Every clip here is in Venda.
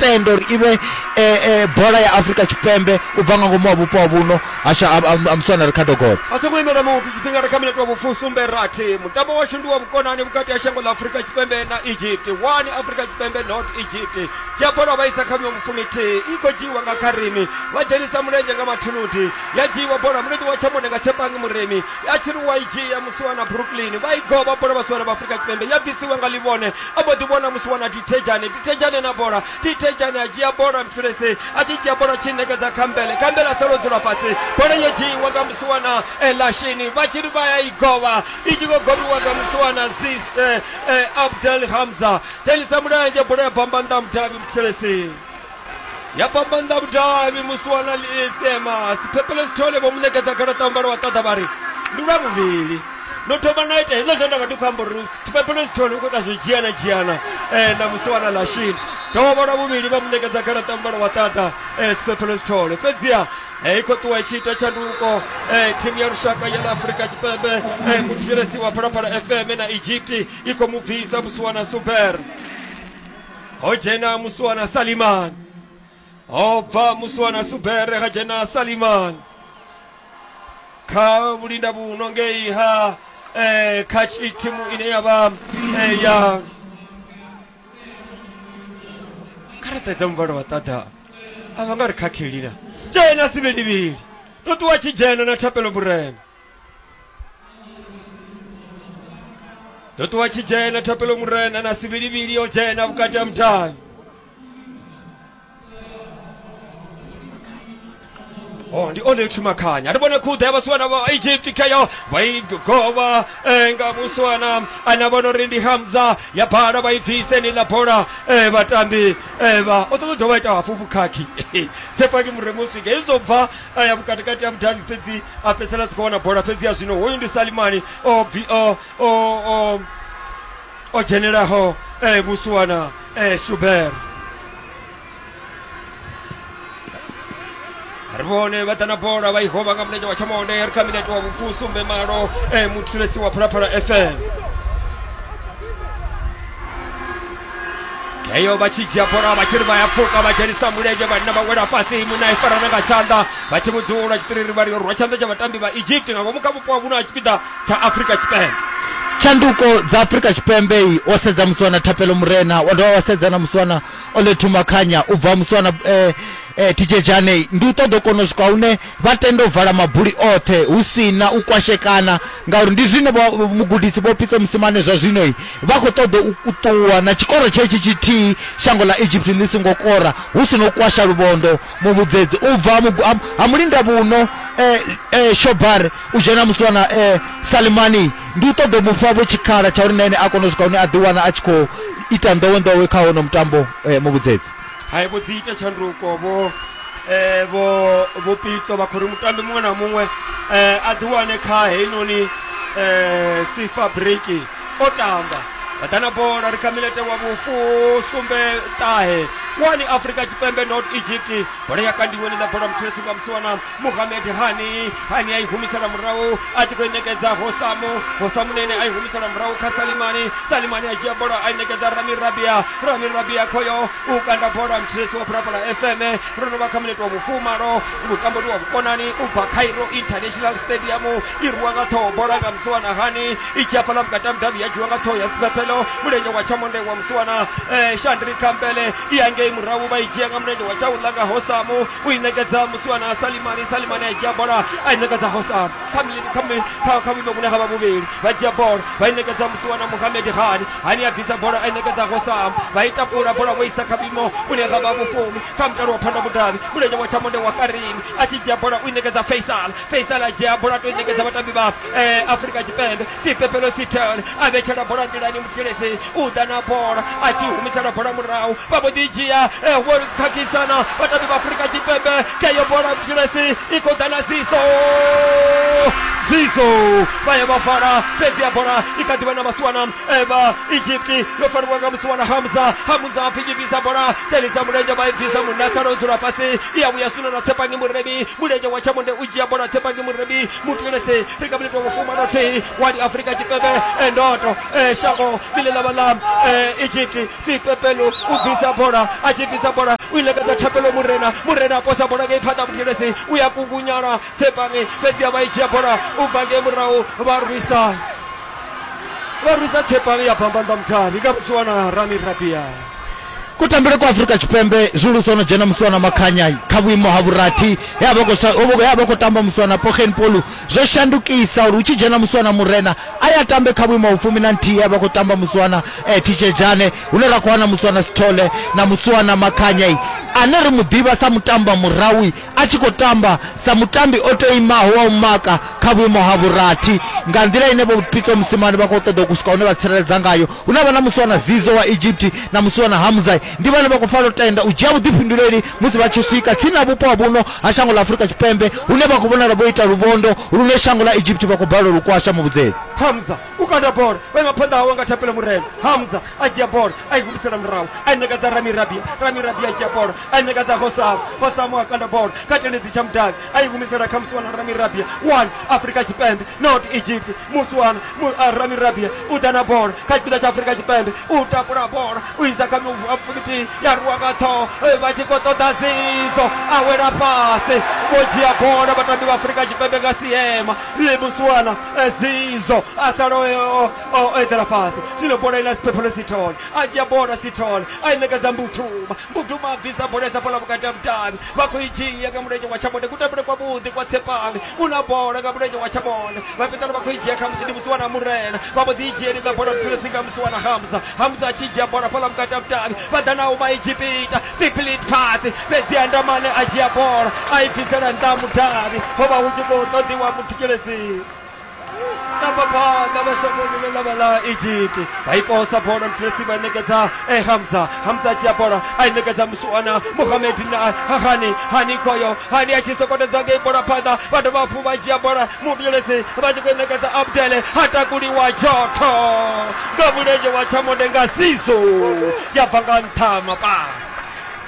tenda uri i vhe e, e, bola ya afurika tshipembe u bva nga ngomu wa vhupo ha vhuno hasha ha muswana ricardo gods a songo imela muthu tshifhinga ri kha minete wa vhufusumbe rathi mutambo washu ndi wa vhukonani vhukati ha shango ḽa afurika tshipembe na egypt wani afurika tshipembe not egypt dzhia bola vha isa kha vhuyo vhufumithihi i khou dzhiiwa nga kharimi vha dzhenisa mulenzhe nga mathuludi ya dzhiiwa bola mulenzhe wa tshamone nga tshepangi muremi ya tshi ri wa i dzhia musiwana brooklyn vha i govha bola vhasiwana vha afurika tshipembe ya bvisiwa nga livhone a mbo ḓi vhona musi wana dithejane dithejane na bola dithejane a dzhia bola mthulese a tshi dzhia bola tshi ṋekedza khambele khambele a sala o dzula fhasi bola yo dzhiiwa nga musi wana elashini vha tshi ri vha ya i govha i tshi khou govhiwa nga musi wana zis eh, eh, abdel hamza dzhenisa mulenzhe bola ya bamba nnḓa mudavhi mthulese ya fhambanda vhudavhi musi wana liisema siphephelo sithole vho mu ṋekedza garaṱa ya mbalo wa ṱaḓa vha ri ndi lwa vhuvhili no thoma na ita hezwo zwe nda vha ndi khou amba uri siphephelo sithole u khou ita zwo dzhiana dzhiana um na musi wana lashini dovha lwa vhuvhili vha mu ṋekedza garaṱa ya mbalo wa ṱaḓa um siphephelo sithole fhedziha i khou ṱuwa itshi ita tshanduko thimu ya lushaka ya ḽa afurika tshipembe muthetshelesi wa phalaphala fm na egypt i khou mu bvisa musi wana super ho dzhena musuwana salimani ho bva musuwana subere ha dzhena salimani kha vhulinda vhuno ngei ha eh, kha tshi- thimu ine ya vha eh, ya karata dza muvhala wa ṱaḓa a vha nga ri khakheli na dzhena sivhilivhili ṱuṱuwa tshi dzhena na thapelo vhurema ndo ṱuwa tshi dzhena thapelo murena na sivhilivhili yo dzhena vhukati ha mudavhi Oh, ndi one thumakhanya ari vhone khuḓa ya vhasiwana vha egypt kheyo vha i govha eh, nga musiwana ana vhona uri ndi hamza ya bala vha i bvise ni ḽa bola eh, vhatambi eh, vha o ṱoḓa u dovha ita hafhu vhukhakhi tsepaki muremu swika izwo bva a ya vhukati kati ya vhudavhi fhedzi a fhedzisela a si khou wana bola fhedzi ya zwino hoyu ndi salimani o bvi o o o o dzhenelaho eh, musuwana eh, shuber ri vhone vha ḓa na bola vha i hova nga mulenzhe wa tshamonde ri kha minete wa vhufusumbe malo eh, muthulesi wa phalaphala fm eyo vha tshi dzhia bola vha tshi ri vha ya pfuka vha dzhenisa mulenzhe vhanna vha wela fhasi munna i farana nga tshanḓa vha tshi vhudzula tshitiriri vha ri yo rwa tshanḓa tsha vhatambi vha egypt nga ngomu kha vhupo ha vhuno ha tshipiḓa tsha afrika tshipembe tshanduko dza afrika tshipembe i o sedza muswana thapelo murena wa dovha wa sedza na muswana olethu makhanya u bva muswana eh, eh, tijejane ndi u ṱoḓa u kona u swika hune Vha tenda u vala mabuli oṱhe hu si na u kwashekana ngauri ndi zwine vho- mugudisi Vho Pitso Mosimane zwa zwino i, vha khou ṱoḓa u u ṱuwa na tshikoro tshetshi tshithihi shango ḽa Egypt ḽi songo kora hu si na u kwasha luvhondo muvhudzedzi u bva mugu- ha- ha mulindavhuno eh, eh, Shobar u dzhena muswana eh, Salimani ndi u ṱoḓa u mu fha vho tshikhala tsha uri na ene a kone u swika hune a ḓiwana a tshi khou ita nḓowenḓowe kha hono mutambo eh, muvhudzedzi hai vho dzi ita tshanduko vho eh, vho vho pitso vha khori mutambi muṅwe na muṅwe eh, a ḓi wane kha heinoni eh, sifa break o tamba vha ḓa na bola ri kha milete wa vhufu sumbe ṱahe wani afrika tshipembe not egypt bola ya kandiweni ḽa bola mutshilesi nga musiwana muhamed hani hani a i humisela murahu a tshi khou i ṋekedza hosamu hosamu nene a i humisela murahu kha salimani salimani a dzhia bola a i ṋekedza rami rabia rami rabia khoyo u kanda bola mthiresi wa phalaphala fm ro no vha kha minete wa vhufumalo mutambo ndi wa vhukonani u bva cairo international stadium i rwiwa nga ṱhoho bola nga musiwana hani i tshi hafhala vhukati mudavhi ya dzhiwa nga ṱhoho ya sibethelo mulenzhe wa tshamonde wa musiwana eh, shandri kambele i angei murahu vha i dzhia nga mulenzhe wa tshaula nga hosamu u i ṋekedza musiwana salimani salimani a dzhia bola a i ṋekedza hosam kha mi- kha mi- kha- kha vhuimo vhune ha vha vhuvhili vha dzhia bola vha i ṋekedza musiwana muhamedi hani hani a bvisa bola a i ṋekedza hosam vha i takula bola vho isa kha vhuimo vhune ha vha vhufumi kha mutalo wa phanda mudavhi mulenzhe wa tshamonde wa karini a tshi dzhia bola u i ṋekedza faisal faisal a dzhia bola a to i ṋekedza vhatambi vha eh, afrika tshipembe sipepelo sitel a vhetshela bola nḓilani muthelesi u ḓa na bola a tshi humisela bola murahu vha vho ḓi dzhia eh, vho khakhisana vhatambi vha afurika tshipembe keyo bola muthelesi i khou ḓa na siso siso vha ya vha fara fhedzi ya bola i kha ḓivha na vhasiwana eva eh, egypt yo fariwa nga musiwana hamza hamza a pfinyibisa bola thelisa mulenzhe vha i bvisa munna tsala o dzula fhasi i ya vhuya swino na tshepangi muremi mulenzhe wa tshamonde u dzhia bola tshepangi muremi mutilesi ri nga vhilitwa vhufumanasi wa ndi afrika tshipembe eh, ndoto eh, shango ḽine ḽa vha ḽa eh, egypt sipepelo u bvisa bola a tshi bvisa bola u ilekedza thapelo murena murena a posa bola ngei phanḓa mutilesi u ya kungunyala tsepange fhedzi a vha i dzhia bola u bva ngei murahu vha rwisa vha rwisa tsepange ya bambanḓa muthavhi nga vhusiwana rami rabia Kutambele kwa Afrika Tshipembe zwihulusa ho no dzhena musi wana makhanya kha vhuimo ha vhurathi he a vha khou sa- ho vha- he a vha khou tamba musi wana Pogen Polu zwo shandukisa uri hu tshi dzhena musi wana Murena a ya tambe kha vhuimo ha vhufumi na nthihi he a vha khou tamba musi wana eh, Tshitshedzhane hune ra khou wana musi wana Sithole na musi wana Makhanya ane ri mu ḓivha sa mutamba murawi a tshi khou tamba sa mutambi o tou imaho wa u maka kha vhuimo ha vhurathi nga nḓila ine vho pitso musimane vha khou ṱoḓa u swika hune vha tsireledza ngayo hu na vha na musi wana zizo wa egypt na musi wana hamzai ndi vhane vha khou fanela u tenda u dzhia vhuḓifhinduleli musi vha tshi swika tsini na vhupo ha vhuno ha shango ḽa afurika tshipembe hune vha khou vhonala vho ita luvhondo lune shango ḽa egypt vha khou balelwa lukwasha muvhudzedzi hamza u kanda bola o ima phanḓa hawe nga thapelo murena hamza a dzhia bola a i humisela murahu a i nekedza ramirabia ramirabia a dzhia bola a i ṋekedza fosamo fosamo a kanda bola kha tendedzi tsha mudavhi a i humisela kha musiwana ramirabia one afrika tshipembe not egypt musiwana ramirabia u ḓa na bola kha tshipiḓa tsha afrika tshipembe u tapula bola u isa kha mufumitihi ya ruwa nga ṱhoho vha tshi khou ṱoḓa zizo a wela fhasi vho dzhia bola vhatambi vha afrika tshipembe nga siema musiwana zizo a sala o eḓela fhasi zwino bola ina siphephelo sithole a dzhia bola sithole a i ṋekedza mbuthuma Mbudumo a bvisa bola isa bola vhukati ha mudavhi vha khou i dzhia nga mulenzhe wa Tshabonde kutambele kwa vhuḓi kwa Tshepange u na bola nga mulenzhe wa Tshabonde vha fhedzana vha khou i dzhia khamusi ndi Musiwana Murena vha mbo ḓi i dzhia lidza bola vhutshelezi nga Musiwana Hamza Hamza a tshi dzhia bola fhaḽa vhukati ha mudavhi vha ḓa na uma Egipita split pass fhedzi ha Ndamane a dzhia bola a i bvisela nnḓa ha mudavhi ho vha hu tshi khou ṱoḓiwa muthikelezi nambaphanda vhashangoni ḽa vha ḽa egipti vha i posa bola mtresi vha ṋekedza e eh, hamza hamza dzhia bola a i ṋekedza musuwana muhamed na hani hani khoyo hani a tshi sokotedza ngei bola phanḓa vha dovha hafhu vha dzhia bola muvhilelesi vha tshi khou i ṋekedza abdele ha takuliwa jotho nga mulenzhe wa tshamode nga siso ya bva nga nṱha mapaa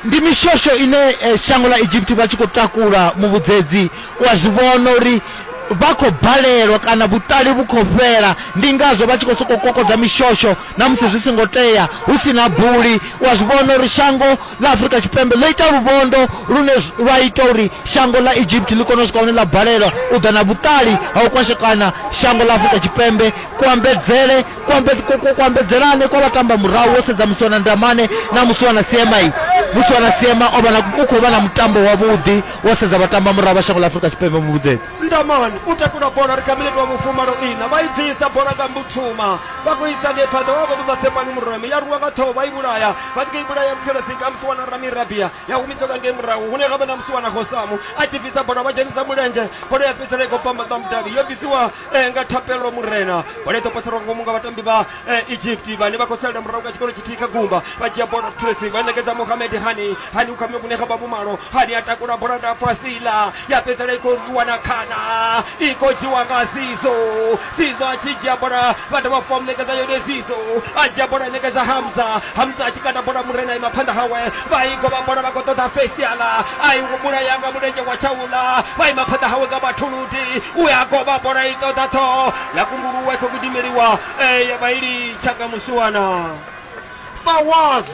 Ndi mishosho ine shango ḽa Egipti vha tshi khou takula muvhudzedzi u a zwi vhona uri vha khou balelwa kana vhuṱali vhu khou fhela, ndi ngazwo vha tshi khou sokou kokodza mishosho na musi zwi songo tea, hu si na buli. U a zwi vhona uri shango ḽa Afrika Tshipembe ḽo ita luvhondo lune lwa ita uri shango ḽa Egipti ḽi kone u swika hune ḽa balelwa u ḓa na vhuṱali ha u kwashekana shango ḽa Afrika Tshipembe, kuambedzele kuambe- ku- ku- kuambedzelane kwa vhatambamurahu wo sedza musiwana ndamane na musiwana siema i musiwana siema o vha na- u khou vha na mutambo wavhuḓi wo sedza vhatambamurahu vha shango ḽa afurika tshipembe muvhudzedzi ndamani u takula bola ri kha minete wa mufumalo ina vha i bvisa bola nga mbuthuma vha khou isa ngei phanḓa vha khou ṱoḓa tsepani mureme ya rwiwa nga ṱhoho vha i vhulaya vha tshi khou i vhulaya muthelesika musi wana ramirabia ya humiselwa ngei murahu hune ga vha na musi wana gosamu a tshi bvisa bola vha dzhenisa mulenzhe bola ya fhedzisela i khou pamba ṱamudavhi yo bvisiwa eh, nga thapelo murena bola i ḓo poselwa nga ngomu nga vhatambi vha eh, egypt vhane vha khou salela murahu nga tshikolo tshithihi kha gumba vha dzhia bola of tracy vha ṋekedza mohamed hani hani u kha mivhune kha vhavhumalo hani a takula bola ndapfu a sila ya fhedzela i khou rwiwa na khana i khou dzhiwa nga sizo sizo a tshi dzhia bola vha dovha fha muṋekedza yone sizo a dzhia bola a ṋekedza hamza hamza a tshi kanda bola murena ima phanḓa hawe vha i govha bola vha khou ṱoḓa fesiala a i humula yanga mulenzhe wa tshaula vha ima phanḓa hawe nga mathulu nthihi u ya kovha bola i ṱoḓa ṱhoho ya kunguluwa i khou gidimeliwa e ya vha i litshanga musiwana fawaz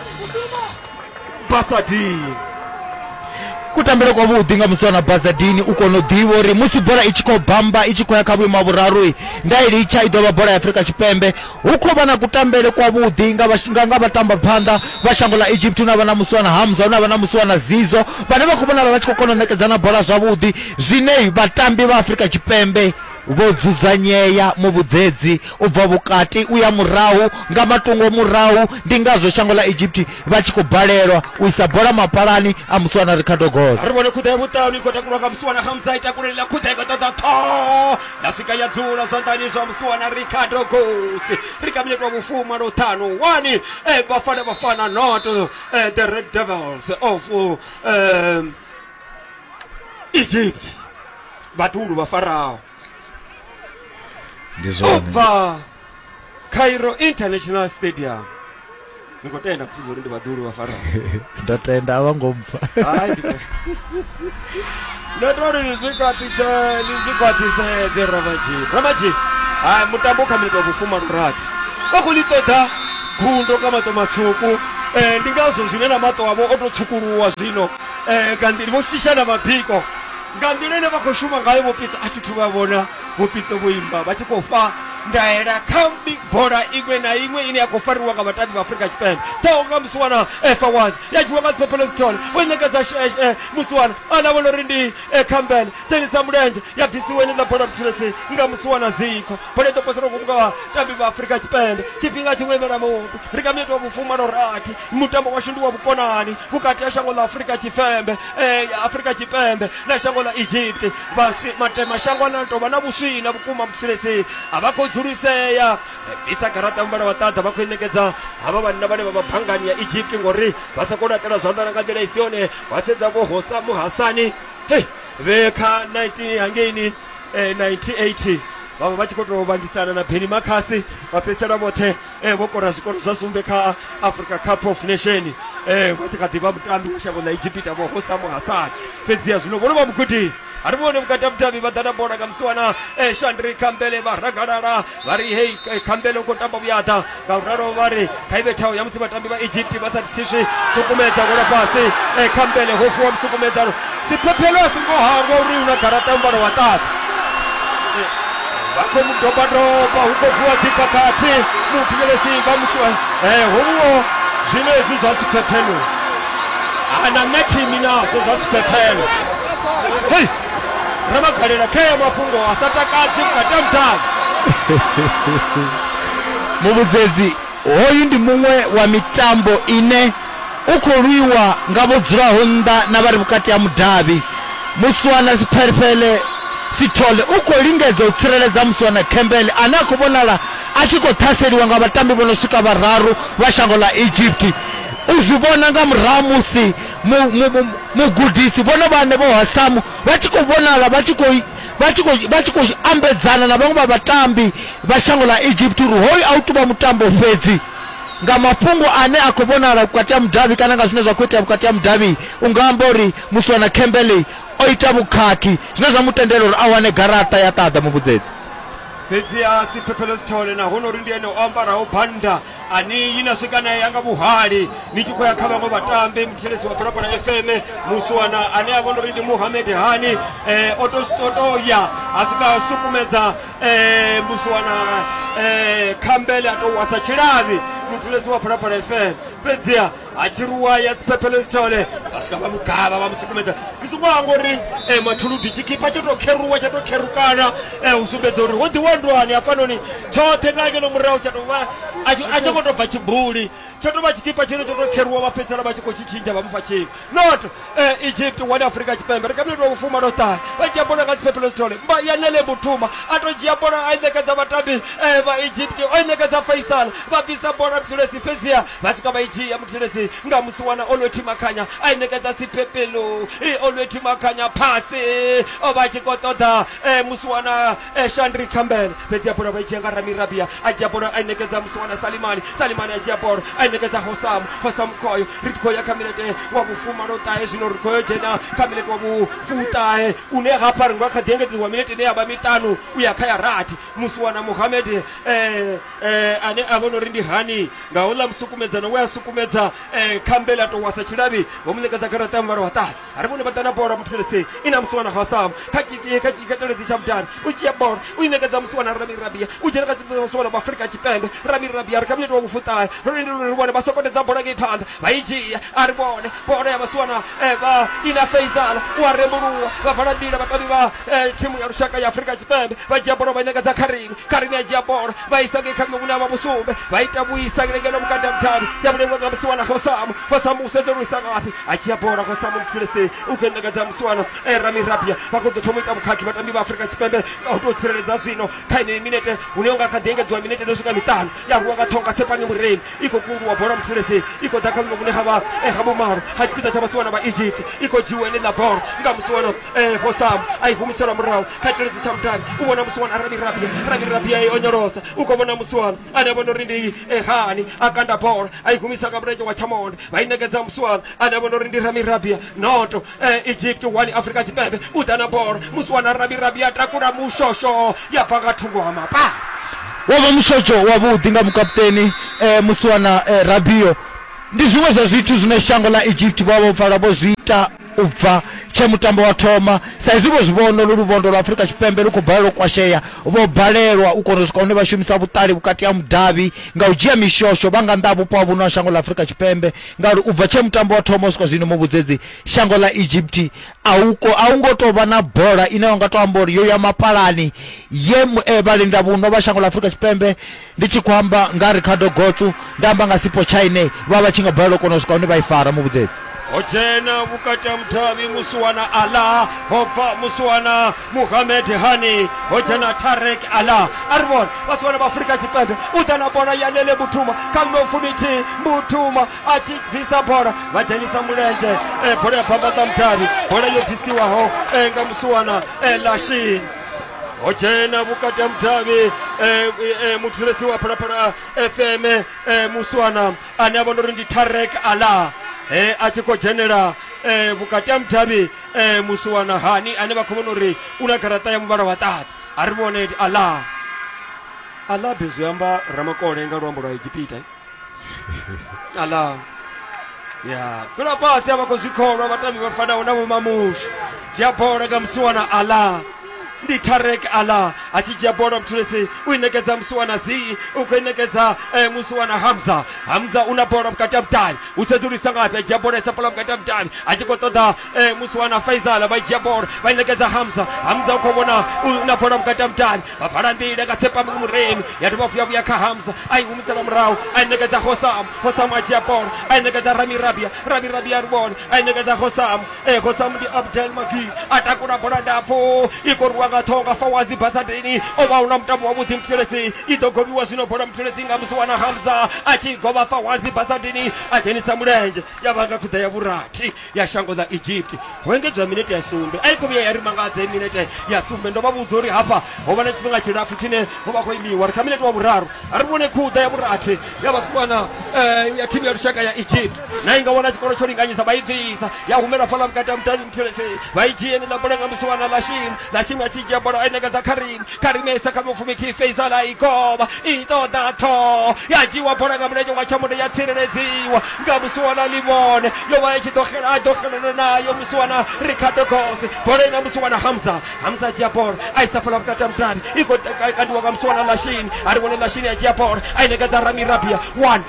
basadini kutambele kwavhuḓi nga musiwana basadini u kona u ḓivha uri musi bola i tshi khou bamba i tshi khou ya kha vhuimo ha vhuraru nda i litsha i ḓo vha bola ya afrika tshipembe Hu khou vha na kutambele kwavhuḓi nga vha nga nga vhatamba phanḓa vha shango ḽa Egypt hune vha na musi wana Hamza hune vha na musi wana Zizo vhane vha khou vhonala vha tshi khou kona u ṋekedzana bola zwavhuḓi zwine vhatambi vha Afrika Tshipembe vho dzudzanyea muvhudzedzi u bva vhukati u ya murahu nga matungo murahu ndi ngazwo shango ḽa Egypt vha tshi khou balelwa u isa bola mapalani a musi wana Ricardo Goss. Ri vhone khuḓa ya vhuṱanu i khou takulwa nga musi wana Hamza i takulelila khuḓa i khou ṱoḓa ṱhoho ya swika ya dzula zwanḓani zwa musiwana ricardo gosi ri kha minetwa vhufuma lwa ṱhanu wani eh, bafana bafana not uh, the red devils of uh, um, egypt vhatulu vha faraho ndi zwone ubva cairo international stadium ni khou tenda musi zori ndi vhaḓulu vha farao nda tenda a vha ngo mpfa Hai, ndi- ndo to ri ni zwi khwaṱhise ni zwi khwaṱhisedze ramaji ramaji hai mutambo u kha minito vhufuma lurathi vha khou ḽi ṱoḓa gundo nga maṱo matswuku um ndi ngazwo zwine na maṱo avho o tou tshukuluwa zwino um nga nḓila vho shisha na mabiko nga nḓila ine vha khou shuma ngayo vhopitso a thi thu vha vhona vhopitso vho imba vha tshi khou fha ndaela kha mi- bola iṅwe na iṅwe ine ya khou fariwa nga vhatambi vha afurika tshipembe ḓaho nga musiwana efa was ya dzhiwa nga dzipopolesitol wo ṋekedza sheshe musiwana a lavhola uri ndi eh, campbell tsenisa mulenzhe ya bvisiwa ine ḽa bola vhuthulesi nga musiwana zikho bola i ḓo posela ngomu nga vhatambi vha afurika tshipembe tshifhinga tshiṅwe imela mutu ri nga minete wa vhufumalo rathi mutambo washu ndi wa vhukonani vhukati ha shango ḽa afurika tshipembe eh, afurika tshipembe na shango ḽa egypt Vhaswi, Matema-shango ane a tou vha na vhuswii na vhukuma vhutshilesi a vha khou dzulisea. Bvisa garaṱa ya muvhala wa ṱaḓa vha khou i ṋekedza havha vhanna vhane vha vha banngani ya Egypt ngori vha sa khou laṱela zwanḓa na nga nḓila i si yone. Wa sedza vho Hosa Muhasani hei vhe kha 19 hangeini eh, 98 vhavha vha tshi khou tou vhangisana na Benny Makhasi vha fhedzisela vhoṱhe eh vho kora zwikoro zwa sumbe kha africa cup of nation eh vha tshi kha ḓivha mutambi wa shango ḽa egipita vho hosamu hasani fhedziha zwino vhono vha mugudisi ari vhone vhukati ha vhudavhi vha ḓa na bola nga musiwana eh shandri khambele vha ragalala vha ri hei eh, khambele u khou tamba vhuyaḓa nga u ralo vha ri kha i vhe thaho ya musi vhatambi vha egypt vha sa thiswi sukumedza gola fhasi eh khambele ho fhiwa musukumedzano Siphephelo a songo hangwa uri una garaṱa ya muvhala wa ṱaḓa. Vha khou mu doba doba hu khou vuwa dzi khakhathi muthivhelesi vha mu eh hovhuwo zwino hezwi zwa siphephelo. Ana methini nazwo zwa siphephelo. Hei ramagalela khea mafhungo a sa takadzi vhukati ha muḓalo. Muvhudzedzi, Hoyu ndi muṅwe wa mitambo ine U khou lwiwa nga vho dzulaho nnḓa na vha re vhukati ha mudavhi. Muswana Siphelefhele Sithole u khou lingedza u tsireledza muswana Khembele ane a khou vhonala a tshi khou ṱhaseliwa nga vhatambi vho no swika vhararu vha shango ḽa Egypt. U zwi vhona nga murahu musi mugudisi vhone vhaṋe Vho Hasamu vha tshi khou vhonala vha tshi khou vha tshi khou vha tshi khou ambedzana na vhaṅwe vha vhatambi vha shango ḽa Egypt uri hoyu a u tou vha mutambo fhedzi. nga mafhungo ane a khou vhonala vhukati ha mudavhi kana nga zwine zwa khou itea vhukati ha mudavhi u nga amba uri muswana Kemberley o ita vhukhakhi zwine zwa mu tendela uri a wane garaṱa ya ṱaḓa muvhudzedzi. Fhedzi a si Phefheḽo Sithole na hono uri ndi ene o ambaraho bannda aniyi na swika nae yanga vhuhali ni tshi khou ya kha vhaṅwe vhatambi mutsireledzi wa Phalaphala FM muswana ane a vhona uri ndi Muhamed Hani eh, o to o to ya a swika a sukumedza eh muswanana eh khambele a tou wasa tshilavhi muthuledzi wa phalaphala fm fhedziha ha tshiruwa ya siphephelo isithole vha swika vha mugavha vha musukumedza ndi songo amba uri eh mathuludi tshikipa tsho tou kheruwa tsha tou kherukana eh u sumbedza uri ho ḓiwandwani hafhanoni tshoṱhe nga ngeno murahu tsha tou vha a tshi- a tshi ngo tou bva tshibuli tsho tou vha tshikipa tshine tsho tou kheruwa vha fhedzisela vha tshi khou tshi tshintsha vha mufha tshivhi not eh, egypt one afrika tshipembe ri kha minete wa vhufuma no ṱahe vha dzhia bola nga dziphephelo dzithole mba ya nele muthuma a tou dzhia bola a i ṋekedza vhatambi eh, vha egypt o i ṋekedza faisal vha bvisa bola muthelesi fhedziha vha swika vha i dzhia muthelesi nga musi wana olwethi makhanya a i ṋekedza sipepelo i olwethi makhanya phasi o vha a tshi khou ṱoḓa eh, musiwana eh, shandri campbell fhedzi ya bola vha i dzhia nga ramirabia a dzhia bola a i ṋekedza musiwana salimani salimani a dzhia bola a i ṋekedza hosamu hosamu khoyo ri khou ya kha milete wa vhufumalo ṱahe zwino ri khou yo dzhena kha milete wa vhufuṱahe une hafha ri nga kha ḓi engedziwa milete ine ya vha miṱanu u ya kha ya rathi musiwana muhamed eh, eh, ane a vhona uri ndi hani nga houḽa musukumedzano we a sukumedza eh, campbell a tou wasa tshilavhi vho mu ṋekedza garaṱa ya muvhalo wa ṱahe a ri vhone vha ḓa na bola muthelesi i na musiwana hasam kha tshiteledzi tsha mudani u dzhia bola u i ṋekedza musiwana rami rabia u dzhena kha tshiteledzi musiwana wa afurika tshipembe rami rabia ri kha minete wa vhufuṱahe ro lindela uri ri vhone vha sokodedza bola ngei phanḓa vha i dzhia a ri vhone bola ya vhasiwana eva i na feizala u a rembuluwa vha vala nḓila vhatambi vha eh, thimu ya lushaka ya afurika tshipembe vha dzhia bola vha i ṋekedza kharini kharini ya dzhia bola vha isa ngei kha miṅwe vhune ha vha vhusumbe vha ita vhuisa ngeno vhukati ha muthavhi ya vhulengwa nga musiwana khosamu khosamu u sedza uri isa ngafhi a dzhia bola khosamu mufulesei u khou i ṋekedza musiwana eh, ramirabia vha khou ḓo thoma u ita vhukhakhi vhatambi vha afurika tshipembe nga u tou tsireledza zwino kha yeneyi minete hune unga kha ḓi engedziwa minete no swika miṱanu ya rwiwa nga ṱhonga tshepange mureni i khou kundwa bola muthelesi i khou ḓa kha vhuimo vhune ha vha eh, ha vhumalo ha tshipiḓa tsha vhasiwana vha egypt i khou dzhiwa ene ḽa bola nga musiwana eh, hosam a i humiselwa murahu kha tshiledzi tsha mutani u vhona musiwana rabi rabia rabi rabia i onyolosa u khou vhona musiwana ane a vhona uri ndi eh, hani a kanda bola a i humisa nga mulenzhe wa tshamonde vha i nekedza musiwana ane a vhona uri ndi rami rabia noto eh, egypt one afrika tshipembe u ḓa na bola musi wana rabirabi ya takula mushosho ya bva nga thungo ha mapa wo vha mushotsho wavhuḓi nga mukaputeni um musi wana um rabio ndi zwiṅwe zwa zwithu zwine shango ḽa egypt vha vho pfala vho zwi ita u bva tshe mutambo wa thoma sa izwi vho zwi vhono lu luvondo lwa afrika tshipembe lu khou balelwa u kwashea vho balelwa u kona u swika hune vha shumisa vhuṱali vhukati ha mudavhi nga u dzhia mishosho vha nga nnḓa ha vhupo ha vhuno ha shango ḽa afrika tshipembe Ngauri u bva tshe mutambo wa thoma u swika zwino muvhudzedzi shango ḽa Egypt a u a u ngo tou vha na bola ine wa nga tou amba uri yo ya mapalani ye eh, vhalenda vhuno vha shango ḽa Afrika Tshipembe ndi tshi khou amba nga Ricardo Gotsu nda amba nga Sipo Chaine vha vha tshi nga balelwa u kona u swika hune vha i fara muvhudzedzi ho dzhena vhukati ha mudavhi musiwana ala ho bva musiwana muhamed hani ho dzhena tarek ala a ri vhona vha si vhona vha afurika tshipembe u ḓa na bola ya lele mutuma kha ḽofu mithihi mutuma a tshi bvisa bola vha dzhenisa mulenzhe eh, bola ya bambaḓa mudavhi bola yo bvisiwaho eh, nga musuwana eh, lashin ho dzhena vhukati ha mudavhi eh, eh, muthulesi wa phalaphala fm eh, musuwana ane a vhona uri ndi tarek ala eh, a tshi khou dzhenela eh, vhukati ha mudavhi eh musiwana hani ane vha khou vhona uri u na garaṱa ya muvhala wa ṱaḓa a ri vhone ala ala be zwi amba ramakole nga luambo lwa egipita ala ya dzula fhasi a vha khou zwi kholwa vhatambi vha fanaho na vhomamushi dzhia bola nga musiwana ala ndi tarek ala a tshi dzhia bola mthulisi u i ṋekedza musuwana zii u khou i ṋekedza eh, musuwana hamza hamza u na bola vhukati ha vhudavhi u sedzulisa ngafhi a dzhia bola isa bola vhukati ha vhudavhi a tshi khou ṱoḓa eh, musuwana faizala vha i dzhia bola vha i ṋekedza hamza hamza u khou vhona u na bola vhukati ha vhudavhi vha vala nḓila nga tsepami muremi ya dovha hafhu ya vhuya kha hamza a i humisela murahu a i ṋekedza hosamu hosamu a dzhia bola a i ṋekedza ramirabia ramirabia ri vhone a i ṋekedza hosamu e khou sa ndi abdel magui a takula bola ndapfu i khou rwiwa nga ṱhonga fawazi basadeni o vha hu na mutambo wavhuḓi muthelesi i ḓo gobiwa zwino bola muthelesi nga musi wana hamza a tshi govha fawazi basadeni a dzhenisa mulenzhe ya vha nga khuḓa ya vhurathi ya shango ḽa egypt ho engedzwa minete ya sumbe a i khou vhuya ya ri mangadza i minete ya sumbe ndo vha vhudza uri hafha ho vha na tshifhinga tshilapfu tshine ho vha khou imiwa ri kha minete wa vhuraru a ri vhone khuḓa ya vhurathi ya vhasiwana eh, ya thimu ya lushaka ya egypt na inga wana tshikolo tsho linganyisa vha i bvisa ya humela fhaḽa vhukati ha mutani muthelese vha i dzhie ni ḽa bola nga musiwana ḽa shim ḽa shim a tshi dzhia bola a i nekedza kharim kharim ya isa kha mufumiti faisal a i govha i ṱoḓa ṱhoho ya dzhiiwa bola nga mulenzhe wa tshamundo ya tsireledziwa nga musiwana limone yo vha i tshi ḓo xela a ḓo xelana nayo musiwana ricardo gose bola ina musiwana hamza hamza a dzhia bola a isa fhaḽa vhukati ha mutani i khou kandiwa nga musiwana ḽa shini a ri vhone ḽa shini a dzhia bola a i nekedza rami rabia one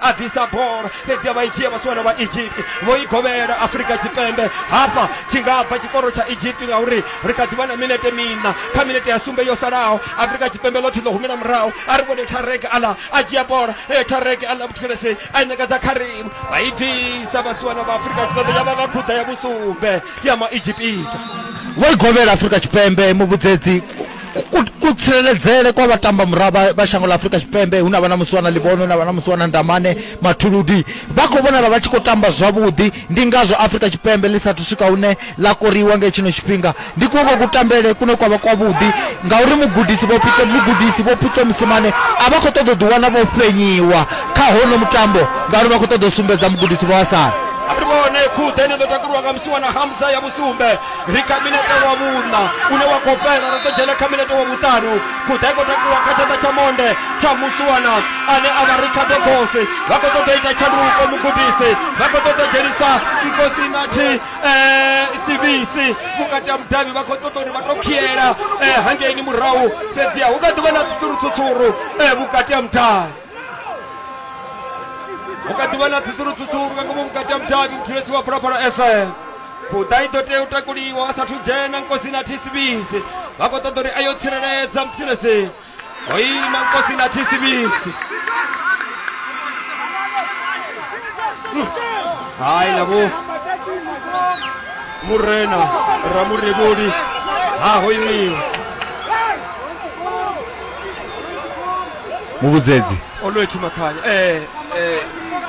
a ḓisa bola fhedzi a vha i dzhia vhasiwana vha egypt vho i govhela afrika tshipembe hafha tshi nga bva tshikoro tsha egypt ngauri ri kha ḓivha na minete miṋa kha minete ya sumbe yo salaho afrika tshipembe ḽoṱhe ḽo humela murahu a ri vhone tarek ala a dzhia bola e tarek ala vhuthulese a i ṋekedza kharim vha i ḓisa vhasiwana vha afrika tshipembe ya vha nga khuḓa ya vhusumbe ya ma egypita vho i govhela afrika tshipembe muvhudzedzi kutsireledzele kwa vhatamba murava vha shango ḽa afurika tshipembe hu na vha na musiwana ḽibono na vha na musiwana ndamane mathuludi vha khou vhonala vha tshi khou tamba zwavhuḓi ndi ngazwo afurika tshipembe ḽi sathu swika hune ḽa koriwa nge tshino tshifhinga ndi kuoko kutambele kune kwa vha kwavhuḓi ngauri mugudisi vhopito mugudisi vhopito musimane a vha khou ṱoḓa u ḓiwana vho fhenyiwa kha hono mutambo ngauri vha khou ṱoḓa u sumbedza mugudisi vhawasala ri vhone khuḓe ni ḓo takuliwa nga musiwana hamza ya vhusumbe ri kha minete wa vhuṋa une wa khou fhela ra ḓo dzhena kha minete wa vhuṱanu khuḓa i khou takuwa kha tshanḓa tsha monde tsha musuwana ane a vha ri kha dogosi vha khou ṱoḓa ita tshanduko mugudisi vha khou ṱoḓa dzhenisa nkosi nathi eh, sivisi vhukati ha mudavhi vha khou ṱoḓa uri vha tou khiela eh, hangeini murahu fhedziha hu kha ḓi vha na tsutsuru tsutsuru eh, vhukati ha mudavhi vhukati vha na tsitsulutsutsulu nga ngomu vhukati ha mudavhi muthulesi wa phalaphala fm fuda i ḓo tea u takuliwa a sathu dzhena nkosi na thisibisi vha khou ṱoḓa uri a yo tsireledza muthulesi ho ima nkosi na thisibisi hai na vho murena ramurevholi ha ho imiwa muvhudzedzi o no etshu makhanya eh eh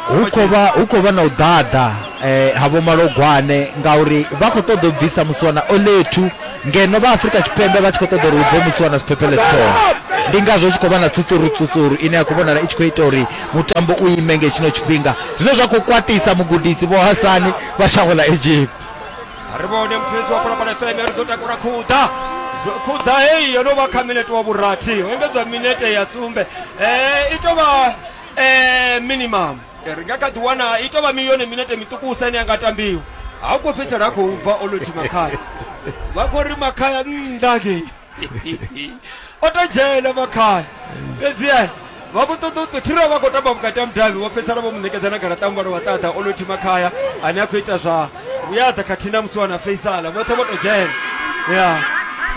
hu khou vha hu khou vha na u ḓaḓa eh ha vho malogwane ngauri vha khou ṱoḓa u bvisa musiwana olethu ngeno vha afrika tshipembe vha tshi khou ṱoḓa uri hu bve musiwana siphephele sithoma ndi ngazwo hu tshi khou vha na tsutsuru tsutsuru ine ya khou vhonala i tshi khou ita uri mutambo u ime nge tshino tshifhinga zwine zwa khou kwatisa mugudisi vho hasani vha shango ḽa egypt ri vhone muthetshi wa phalaphala fm ri ḓo takula khuḓa Zwo- khuḓa heyi yo no vha kha minete wa vhurathi ho engedzwa minete ya sumbe um i tou vha um minimum Eh, ri nga kha ḓi wana i tou vha mi- yone minete miṱukusa ine ya nga tambiwa ha khou fhedzisela a khou bva o lo thima khaya vha khou ri makhaya nnḓa ngei o to dzhena makhani fhedziani vha vho ṱoḓa u ṱothira vha khou tamba vhukati ha mudavhi vho fhedzisela vho mu ṋekedza na garaṱa muvhala wa ṱaḓa o lothi makhaya ane a khou ita zwa vhuyaḓa khathihi na musi wana faisala vhoṱhe vho to dzhena ya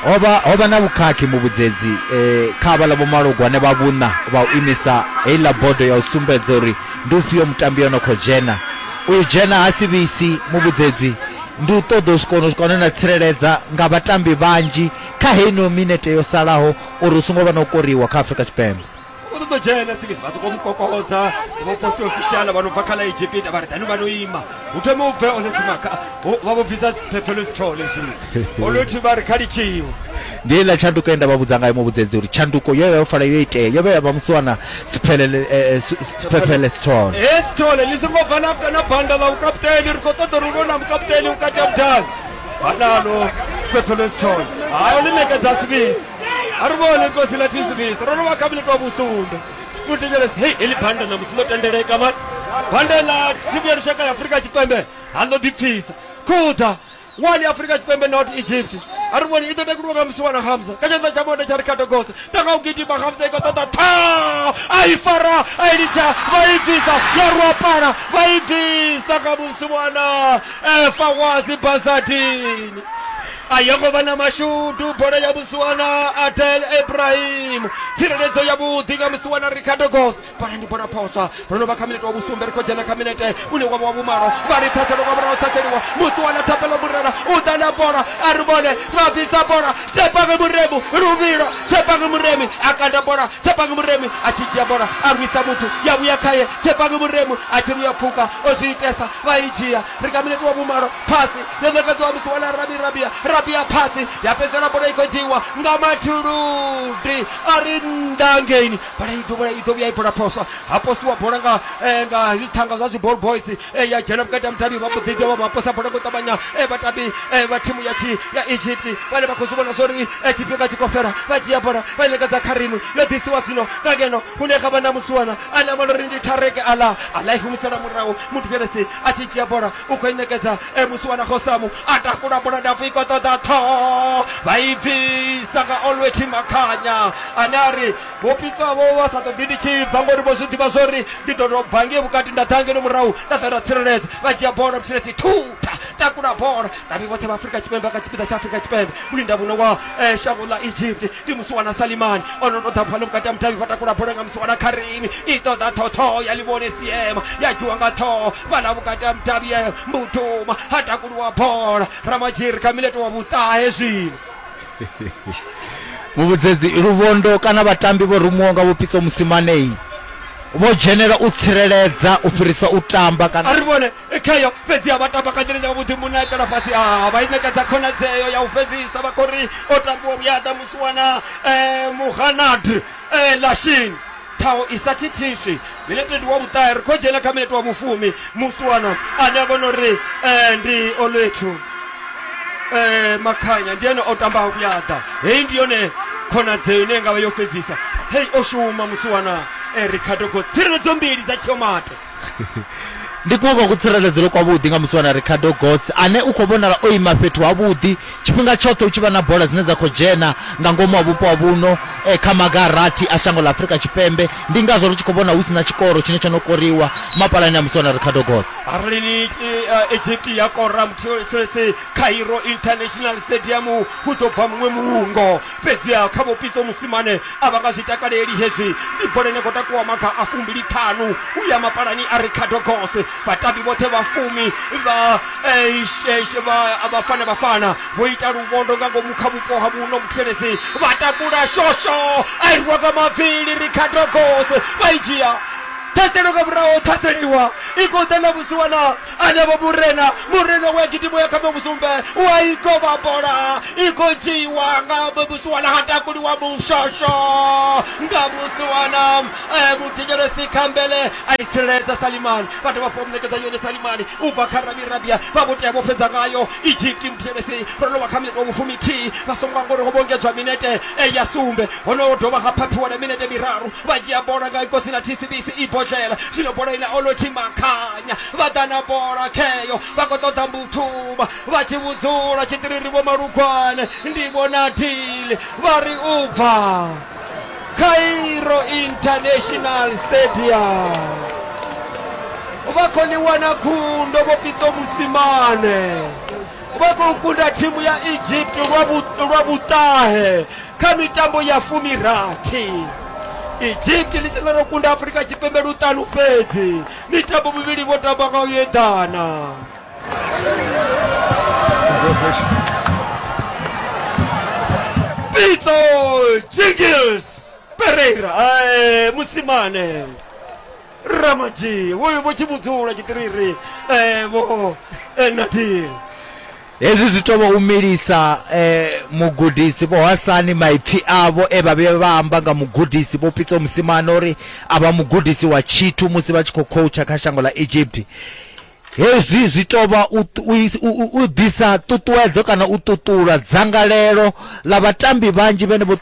hovha hovha na vhukhakhi muvhudzedzi eh, kha vhala vhomalogwane vha vhuṋa vha u imisa heiḽa bodo ya u sumbedza uri ndi ufhio mutambi yo no khou dzhena uyu dzhena ha si vhisi muvhudzedzi ndi u ṱoḓa u swika ono swika hone na tsireledza nga vhatambi vhanzhi kha heino minete yo salaho uri hu songo vha na u koriwa kha afurika tshipembe u ṱoḓa u dzhena singis vha sokou mukokodza vhapofi ofisiala vha no bva kha ḽa egipita vha ri dani vha no ima hu thome u bve olothimakha vha vho bvisa phephelo sithole zwino olothiba ri kha litshiwe Ndi heiḽa tshanduko ye nda vha vhudza ngayo muvhudzedzi uri tshanduko yo vha yo fala yo itea, yo vha ya vha musi wana siphelele eh, eh, si- si- siphephele sithole. He sithole ni songo bva na na banda ḽa vhukaputeni ri khou ṱoḓa uri hu vhe na mukaputeni vhukati ha vhudavhi hanalo siphephelo sithole hayo ḽi nekedza sivisi a ri vhone kosi ḽa tisivisi ro rovha kha minito wa vhusumbe u thetshelesa hei heḽi banda ṋamusi ḽo tendeleka mani banda ḽa thimu ya lushaka ya afurika tshipembe ha ḽo ḓipfisa khuḓa 1 ya afurika tshipembe not egypt a ri vhoni i ḓo takuliwa nga musiwana hamza kha tshanḓa tsha monde tsha rikhato gose tanga u gidima hamza i khou ṱoḓa tha a i fara a i litsha vha i bvisa ya ruapala vha i bvisa kha musiwana efa wazi bazadini a yo ngo vha na mashudu bola ya musiwana adel ibrahim tsireledzo yavhuḓi nga musiwana rikhato gose fhana ndi bona phosa ro no vha kha minete wa vhusumbe ri khou dzhena kha minete une wavha wa vhumalo vha ri ṱhaselo nga murahu ṱhaseliwa musi wana thapelo murera u ḓa na bola a ri vhone ra bvisa bola tsepange muremu luvhilo tsepange muremi a kanda bola tsepange muremi a tshi dzhia bola a rwisa muthu ya vhuya khaye tsepange muremu a tshi ruya pfuka o zwi itesa vha i dzhia ri kha minete wa vhumalo phasi yo ṋekedziwa musi wana rabi rabia rabia phasi ya fhedzela bola i khou dzhiiwa nga mathuludi a ri nnḓa ngeini bola i dovha i dovha ya i bola phoswa ha posiwa bola nga eh, nga zwithanga zwa zwiball boys eh, ya dzhena vhukati ha mutavhi vha mbo ḓi dovha vha posa bola ngo ṱavhanya eh, vhatambi eh, vha thimu ya tshi ya egypt vhane vha khou zwi vhona zwori eh, tshifhinga tshi khou fhela vha dzhia bola vha ṋekedza kha rimu yo ḓisiwa zwino nga ngeno hune kha vha na musiwana a na malori ndi thareke ala ala i humisela murahu muthu fhelesi a tshi dzhia bola u khou i ṋekedza e musi wana khosamu a takula bola ndapfu i khou ṱoḓa ṱhoho vha i bvisa nga olweti makhanya ane a ri vho pitswa vho vha sa ṱoḓi ndi tshi bva ngori vho zwi ḓivha zwo ri ndi ḓo tou bva ngei vhukati nda ḓa ngeno murahu nda ḓa nda tsireledza vha dzhia bola vhuthilesi thutha takula bola ndavhi vhoṱhe vha afurika tshipembe kha tshipiḓa tsha afurika tshipembe mulinda muno wa eh, shango ḽa egypt ndi musi wana salimani o no tou ḓa fhano vhukati ha mutavhi vha takula bola nga musi wana kharimi i ṱoḓa ṱhoṱhoho ya ḽivhone siema ya dzhiwa nga ṱhoho fhaḽa vhukati ha mutavhi ya mbutuma ha takuliwa bola ramadzhiri kha mileto wa vhuṱahe zwino muvhudzedzi luvhondo kana vhatambi vho rumuwa nga vhupitso musimanei vho dzhenela u tsireledza u fhirisa u tamba kana a ri vhone khayo fhedzi a vha tamba nga nḓila nga vhuḓi muṋe a itela fhasi a vha i ṋekedza khonadzeo ya u fhedzisa vha khou ri o tambiwa vhuyaḓa musiwana um muhanad um lashini ṱhaho i sa thithiswi minete ndi wa vhuṱahe ri khou dzhena kha minete wa vhufumi musiwana ane a vhona uri um ndi olwethu um makhanya ndi ene o tambaho vhuyaḓa heyi ndi yone khonadzeo ine ngavha yo fhedzisa hei o shuma musiwana um ricardo go tsireledzo mbili dza tshiomate ndi kuwe kwa kutsireledzelo kwavhuḓi nga musi wana ricardo gots ane u khou vhonala o ima fhethu havhuḓi tshifhinga tshoṱhe u tshi vha na bola dzine dza khou dzhena nga ngomu ha vhupo ha vhuno e, kha maga a rathi a shango ḽa afurika tshipembe ndi ngazwo ri tshi khou vhona hu si na tshikoro tshine tsho no koriwa mapalani a musi wana ricardo gots arali ni uh, egypt ya kora mthulesesi cairo international stadium hu ḓo bva muṅwe muungo fhedziha kha Vho Pitso Mosimane a vha nga zwi takaleli hezwi. Ndi bola ine khou takuwa maga a fumbili-ṱhanu u ya mapalani a Ricardo Goss. Vhatambi vhoṱhe vha fumi vha eh, she- she- vha- vha fana vha fana vho ita luvhondo nga ngomu kha vhupo ha vhuno vhuthelezi vha takula shosho a i rwa nga mavili Ricardo Goss vha i dzhia ṱhaselo nga murahu ṱhaseliwa i khou ḓa na vhusiwana anavho murena murena wa gidimo ya kha muvhusumbe u a i kovha bola i khou dzhiiwa nga muvhusuwana ha takuliwa mushosho nga vhusuwana eh, muthetshelesi khambele a i tsireledza salimani vha dovha fho munekedza yone salimani u bva kha rabi rabia vha vho tea vho fhedza ngayo Ijipti mutevhedzi ro no vha kha minete wa vhufumi-thihi vha songo angwa uri ho vhongedzwa minete ya sumbe. Hono ho dovha ha phaphiwa na minete miraru vha dzhia bola nga ikosi na thisibisi i bodlela. Zwino bola i na Olotjhi Makhanya vha ḓa na bola kheyo vha khou ṱoḓa Mbuthuma vha tshi vhudzula tshiṱiriri Vho Malugwane, Ndivho na Dili vha ri u bva. cairo international stadium vha khou ḽi wana gundo vho pitso musimane vha khou kunda thimu ya egypt lwa vhu- lwa vhuṱahe kha mitambo ya fumirathi egypt ḽi tenda ro kunda afurika tshipembe luṱanu fhedzi mitambo mivhili vho tamba nga u eḓana Pito Jingles Pereira eh, Musimane Ramaji uyu vho chimudzula chitiriri eh, vho eh, Nadir hezwi zwi tou vha u milisa eh, mugudisi vho hasani maipfi avho e vha vhe vha amba nga mugudisi vho pitso musimana uri a vha mugudisi wa tshithu musi vha tshi khou khoutsha kha shango ḽa egypt Hezwi zwi tou vha u, u, u ḓisa ṱuṱuwedzo kana u ṱuṱula dzangalelo ḽa vhatambi vhanzhi vhene vho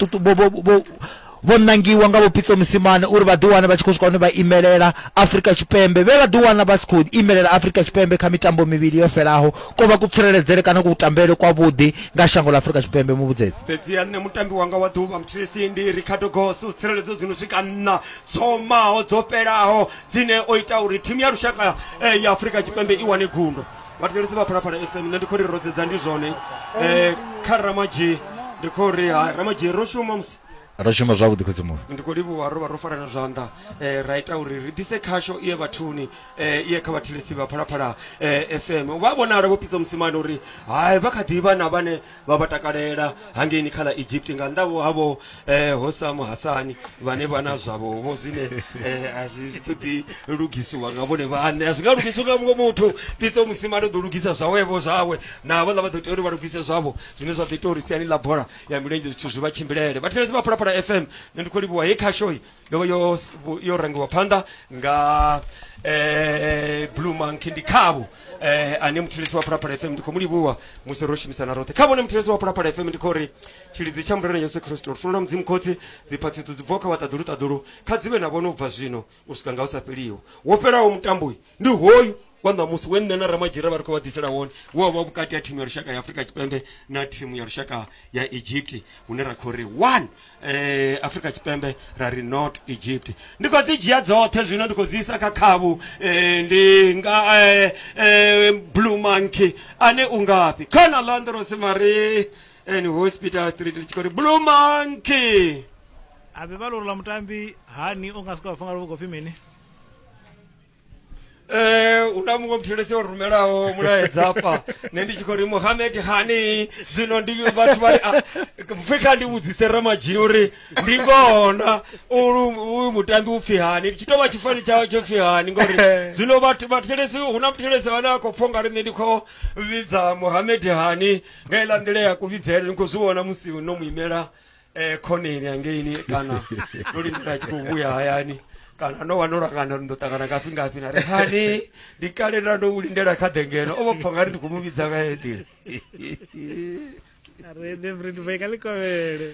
vho nangiwa nga vhopitso musimane uri vha ḓiwane vha tshi khou swika hune vha imelela afurika tshipembe vhe vha ḓiwana vha si khou imelela afurika tshipembe kha mitambo mivhili yo fhelaho ko vha kutsireledzele kana kuutambele kwavhuḓi nga shango ḽa afurika tshipembe muvhudzedzi fhedzi ya nṋe mutambi wanga wa ḓuvha muthilisindi ricardo goso tsireledzo dzi no swika nna dzo maho dzo fhelaho dzine o ita uri thimu ya lushaka eh, ya afurika tshipembe i wane gundo vhathetshelesi vha phalaphala fm nṋe ndi khou ri ro dzedza ndi zwone eh, kha ramadzhi ndi khou ri ha ramadzhi ro shuma musi ro shuma zwavhuḓi khotsi muṅwe ndi khou livhuwa ro vha ro farana zwanḓa eh, ra ita uri ri ḓise khasho iye vhathuni eh, iye kha vhathetshelesi vha phalaphala eh, fm vha vhonala vho pidza musimane uri hai vha kha ḓivha na vhane vha vha takalela hangeini kha ḽa egypt nga nnḓavho havho eh, hosamu hasani vhane vha na zwavho vho zwine eh, a zwi zwi ṱoḓi lugisiwa nga vhone vhaṋe a zwi nga lugisiwa nga muṅwe muthu pitso musimane u ḓo lugisa zwawevho zwawe na vhaḽa vha ḓo tea uri vha lugise zwavho zwine zwa ḓo ita uri siani ḽa bola ya milenzhe zwithu zwi vha tshimbilele vhathetshelesi vha phalaphala fm nṋe ndi khou livhuwa he khashoyi Loko yo yo rhangiwa phanda nga eh Blue Monkey ndi khavho eh ane muthulisi wa Phalaphala FM ndi khou mu livhuwa musi ro shumisana roṱhe khavho ne muthulisi wa Phalaphala FM ndi khou ri tshilidzi tsha Murena Yesu Kristo lufuno lwa Mudzimu Khotsi dziphatsitso dzi bvaho kha vhaṱaḓulu ṱaḓulu kha dzivhe na vhone u bva zwino u swika nga u sa fheliho wo fhelaho mutambo uyu ndi hoyu wa ṋamusi we nṋe na ramadzhira vha ri khou vha ḓisela wone wo vha vhukati ha thimu ya lushaka ya afurika tshipembe na thimu ya lushaka ya egypt hune ra khou ri one eh, afurika tshipembe ra ri not egypt ndi khou dzi dzhia dzoṱhe zwino ndi khou dzi isa kha khavhu eh, ndi nga eh, eh, blue monkey ane u ngafhi khana landros mari and hospital street ndi tshi khou ri blue monkey a vhe vha lori ḽa mutambi hani o nga si khou vha funga luvho khou pfi mini Eh, una muṅwe muthetshelesi o rumelaho mulaedza hafha nṋe ndi tshi khou ri muhamed hani zwino ndi vhathu vha ri ah, pfhi kha ndi vhudzise ramadzhini uri ndi ngona uyu mutambi upfhi hani tshi tou vha tshifani tshawe tsho pfhi hani ngori zwino vhathu vhathetshelesi hu na muthetshelesi vhane a khou pfha ungari nṋe ndi khou vhidza muhamed hani nga iḽa nḓila ya kuvhidzele ni khou zwi vhona musi no mu imela eh, khoneni hangeini kana ndo lindela a tshi khou vhuya hayani kana no vha ndo langana uri ndo ṱangana ngafhi ngafhi na ri hani ndi kale nda ndo u lindela kha ḓengeno o vha pfa nga ri ndi khou mu vhidza nga heyo nḓila rene mfredi boy ka lekobele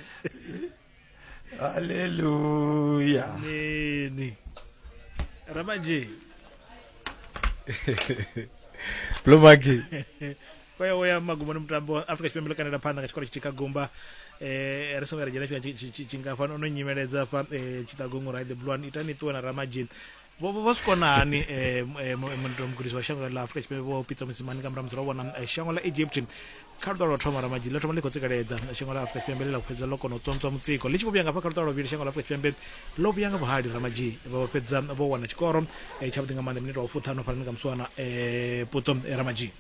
halleluya neni ramanje blomaki vha ya uya magumoni mutambo afrika tshipembe ḽo kandela phanḓa nga tshikoro tshitika gumba eh ri songo ri dzhena tshifhinga tshi- tshi- tshi- tshingafhani ono nyimeledza fha eh, tshiṱagongo right the blue one itani ṱuwe na ramadzhini vho vho- vho zwi kona hani eh, mu- eh, mu- mu- mugudisi wa shango ḽa afrika tshipembe vho pitsa musimani nga murahu musi ro vhona eh, shango ḽa egypt kha luṱa lwa u thoma ramadzhini ḽo thoma ḽi khou tsikeledza shango ḽa afrika tshipembe ḽi ḽa fhedza ḽo kona u tsontswa mutsiko ḽi tshi vho vhuya nga fha kha luṱa lwa vhili shango ḽa afrika tshipembe ḽo vhuya nga vhuhali ramadzhini vho fhedza vho wana tshikoro eh, tshavhuḓi nga maanḓa minete wa fuṱhanu fhanani nga muswana eh, putso eh, ramadzhini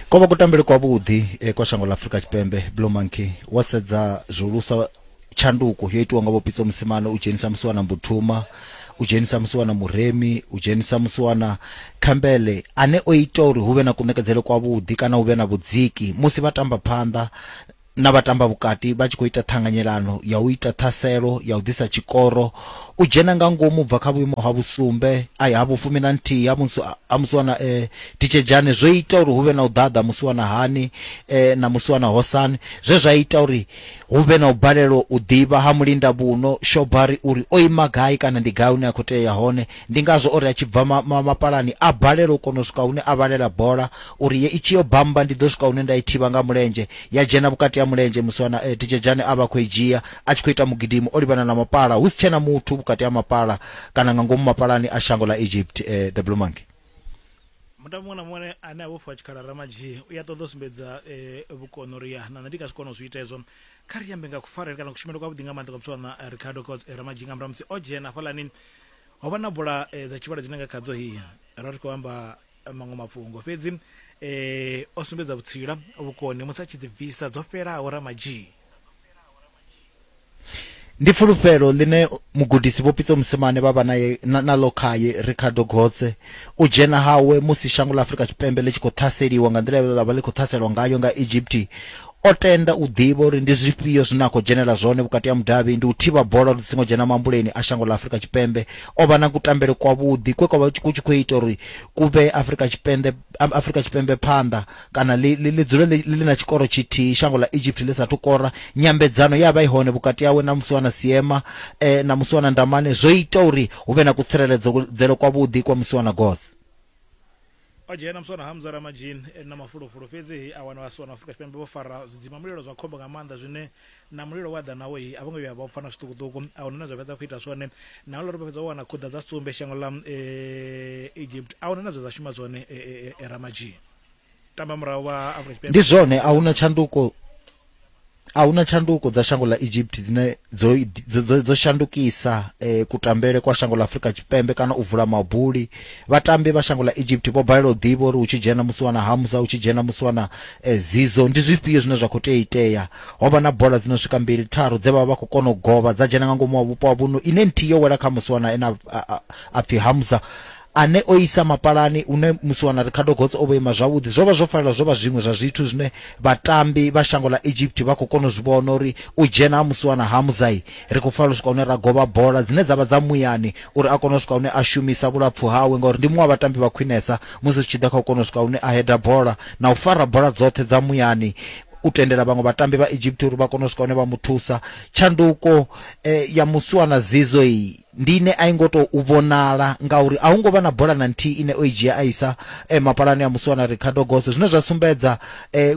ko vha kutambele kwavhuḓi eh, kwa shango ḽa afurika tshipembe blue monkey wo sedza zwihulusa tshanduko yo itiwa nga vhopitso musimane u dzhenisa musi wana mbuthuma u dzhenisa musi wana muremi u dzhenisa musi wana khambele ane o ita uri hu vhe na kunekedzele kwavhuḓi kana hu vhe na vhudziki musi vha tamba phanḓa na vhatamba vhukati vha tshi khou ita ṱhanganyelano ya u ita ṱhaselo ya u ḓisa tshikoro u dzhena nga ngomu bva kha vhuimo ha vhusumbe a ya ha vhufumi na nthihi ha musi ha musi wana eh, titshedzhane zwo ita uri hu vhe na u ḓaḓa musi wana hani eh, na musi wana hosani zwe zwa ita uri hu vhe na u balelwa u ḓivha ha mulinda vhuno shobari uri o ima gai kana ndi gai hune a khou tea ya hone Ndi ngazwo o ri a tshi bva ma, ma, mapalani a balelwa u kona u swika hune a vhalela bola uri ye i tshi yo bamba ndi ḓo swika hune nda i thivha nga mulenzhe ya dzhena vhukati ha mulenzhe musi wana eh, Tijejane a vha khou i dzhia a tshi khou ita mugidimo o livhana na mapala hu si tshena muthu vhukati ha mapala kana nga ngomu mapalani a shango ḽa Egypt eh, the Blue Monkey mutambi muṅwe na muṅwe ane a vhofhiwa tshikhala ramadzhi u ya ṱoḓa u sumbedza eh, vhukono uri ya nana ndi nga zwi kona u zwi ita hezwo kha ri ambe nga kufarele kana kushumele kwavhuḓi nga maanḓa kwa butshwana eh, ricardo cots eh, ramadzhi nga murahu musi o dzhena hafhaḽani Ho vha na bola eh, dza tshivhalo dzine nga khadzo hi ra ri khou amba eh, maṅwe mafhungo fhedzi eh, o sumbedza vhutsila vhukoni musi a tshi ḓibvisa dzo fhelaho ramadzhii Ndi fulufhelo ḽine mugudisi Vho Pitso Mosimane vha vha naye na- naḽo khaye Ricardo Gotse. U dzhena hawe musi shango ḽa Afrika Tshipembe ḽi tshi khou ṱhaseliwa nga nḓila ye ḽa vha ḽi khou ṱhaselwa ngayo nga Egypt O tenda u ḓivha uri ndi zwifhio zwine a khou dzhenela zwone vhukati ha mudavhi, ndi u thivha bola uri dzi songo dzhena mambuleni a shango ḽa Afrika Tshipembe. O vha na kutambele kwavhuḓi kwe kwa vha ku tshi khou ita uri ku vhee Afrika Tshipembe Afrika Tshipembe phanḓa kana ḽi ḽi dzule ḽi ḽi na tshikoro tshithihi shango ḽa Egypt ḽi sa thu kora. Nyambedzano ye ya vha i hone vhukati hawe na Musiwana Seema na Musiwana Ndamane zwo ita uri hu vhe na kutsireledzele kwavhuḓi kwa Musiwana Goth. o dzhena muswana hamza ramajin e na mafulufulu fhedzi a wana vhasiwana afrika tshipembe vho fara zwidzima mulilo zwa khombo nga maanḓa zwine na mulilo wa ḓa nawo hi a vho ngo vhuya vha pfana zwiṱukuṱuku a huna na zwa fhedza khou ita zwone na uri vha fhedza wana khuḓa dza sumbe shango ḽa eh, egypt a huna na zwa shuma zwone eh, eh, ramajin tamba murahu wa afrika tshipembe ndi zwone a huna tshanduko a huna tshanduko dza shango ḽa Egypt dzine dzo dzo, dzo shandukisa eh, kutambele kwa shango ḽa Afrika Tshipembe kana u vula mabuli vhatambi vha shango ḽa Egypt vho balelwa u ḓivha uri hu tshi dzhena musi wana Hamza hu tshi dzhena musi wana eh, Zizo ndi zwifhio zwine zwa khou tea itea ho vha na bola dzino swika mbili tharu dze vha vha khou kona u govha dza dzhena nga ngomu wa vhupo wa vhuno ine nthihi yo wela kha musi wana ena a pfi Hamza Ane o isa mapalani, une musiwana Ricardo Gots o vho ima zwavhuḓi, zwo vha zwo fanela zwo vha zwiṅwe zwa zwithu zwine vhatambi vha shango ḽa Egypt vha khou kona u zwi vhona uri u dzhena ha musiwana ha Muzayi, ri khou fanela u swika hune ra govha bola dzine dza vha dza muyani uri a kone u swika hune a shumisa vhulapfu hawe ngauri ndi muṅwe wa vhatambi vha khwinesa musi zwi tshi ḓa kha u kona u swika hune a heda bola na u fara bola dzoṱhe dza muyani u tendela vhaṅwe vhatambi vha Egypt uri vha kone u swika hune vha mu thusa. Tshanduko ya musiwana Zizo iyi. Ndi ine a i ngo tou vhonala ngauri a hu ngo vha na bola na nthihi ine o i dzhia a isa mapalani a musiwana Ricardo Gosse zwine zwa sumbedza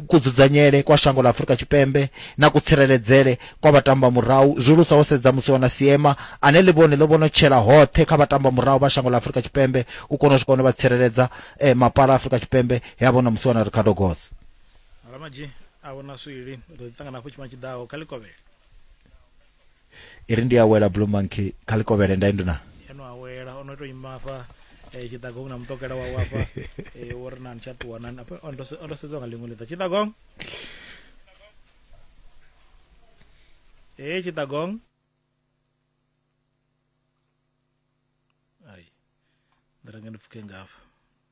kudzudzanyele kwa shango ḽa Afrika Tshipembe na kutsireledzele kwa vhatambamurahu zwihulusa wo sedza musiwana Seema ane ḽivhone ḽo vhonotshela hoṱhe kha vhatambamurahu vha shango ḽa Afrika Tshipembe u kona u swika hune vha tsireledza mapala a Afrika Tshipembe he a vhona musiwana Ricardo Gosse. Alamaji, A hu na swili, ri ḓo ḓiṱangana hafhu tshifhinga tshi ḓaho kha ḽikovhela. i ri ndi a wela blue monkey kha ḽi kovhele nda induna eno a wela o no tou ima afha eh, tshiḓagong na mutokela wawe afha eh, wo ri nani tsha ṱuwa nani Apa, o ndo se- o ndo sedzwa nga ḽiṅwe ḽiḓa tshiḓagong ee tshiḓagong ai ndi renge ndi pfuke ngafha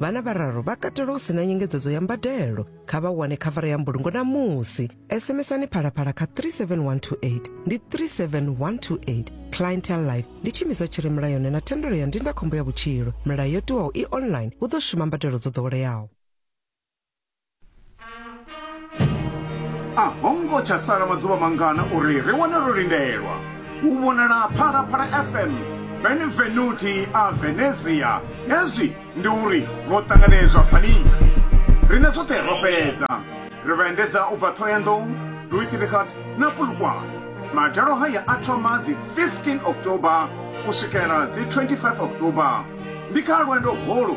vhana vhararu vha katelwa u si na nyengedzedzo ya mbadelo kha vha wane khavara ya mbulungo na musi sms-ani phalaphala kha 37128 ndi 37128 clientel life ndi tshimiswa tshi re mulayoni na thendelo ya ndindakhombo ya vhutshilo milayo yo tiwaho i online hu ḓo shuma mbadelo dzo ḓoweleaho a ho ngo tsha sala maḓuvha mangana uri ri wane ro lindelwa u vhonala phalaphala fm benvenuti a venezia hezwi ndi uri ro ṱanganedzwa paris rine zwoṱhe ro fhedza ri vhaendedza u bva thoyandou luitrihat na pulukwane madalo haya a thoma dzi 15 october u swikela dzi 25 october ndi kha lwendo holu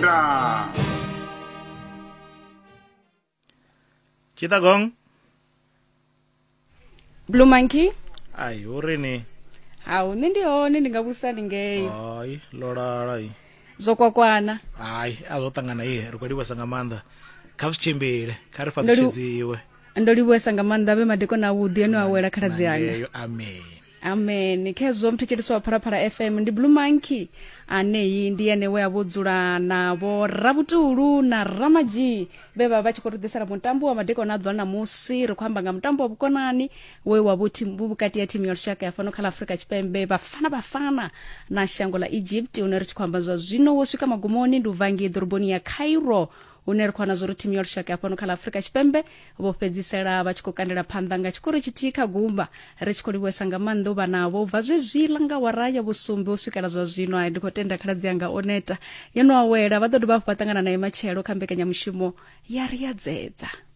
Ra. Chittagong. Blue Monkey. Ai, hu ri ni? Hau, nṋe ndi hone ndi nga vhusa ndi ngei. Hai, ḽo lala i. Zwo kwakwana. Hai, a zwo ṱangana i, ri khou livhesa nga maanḓa. Kha zwi tshimbile, kha ri fhaṱutshedziwe. Ndo livhuwesa nga maanḓa vhe madekona avhuḓi ane a wela khaladzi anga. Amen. amen khezwo mthetshelisi wa phalaphala fm ndi blue monkey aneyi ndi ene we a vho dzula navho rabutulu na ramadzhi vhe vha vha tshi khou ri ḓisela mutambo wa madekwana a ḓuvha ṋamusi ri khou amba nga mutambo wa vhukonani we wa vhu thimu- vhu vhukati ya thimu ya lushaka ya fhano kha ḽa afurika tshipembe vhafana vhafana na shango ḽa egypt une ri tshi khou amba zwa zwino wo swika magumoni ndi u vangi ḓoroboni ya cairo hune ri khou wana zwori thimu ya lushaka ya fhano kha ḽa afurika tshipembe vho fhedzisela vha tshi khou kandela phanḓa nga tshikoro tshithihi kha gumba ri tshi khou livhuwesa nga maanḓa u vha navho bva zwezwiḽa nga wara ya vhusumbe u swikela zwa zwino a ndi khou tenda khaladzi yanga o neta yo no awela vha ḓo dovha hafhu vha ṱangana naye matshelo kha mbekanyamushumo ya ri ya dzedza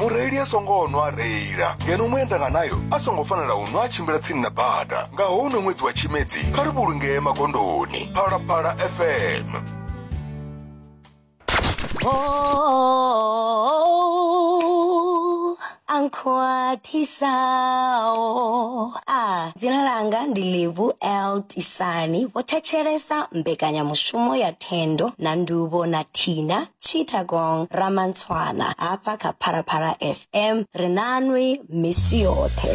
mureili a songo nwa a reila ngeno muendanga nayo a songo fanela u nwa a tshimbila tsini na bada nga houno ṅwedzi wa tshimedzi kha ri vhulungee magondoni phalaphala fm Oh, I'm quite sao. Ah, dzina langa ndi Livu L Tisani. Vho thetshelesa mbekanyamushumo ya Thendo na Nduvo na Tina Chittagong Ramantswana hafha kha Phalaphala FM ri nanwi misi yoṱhe.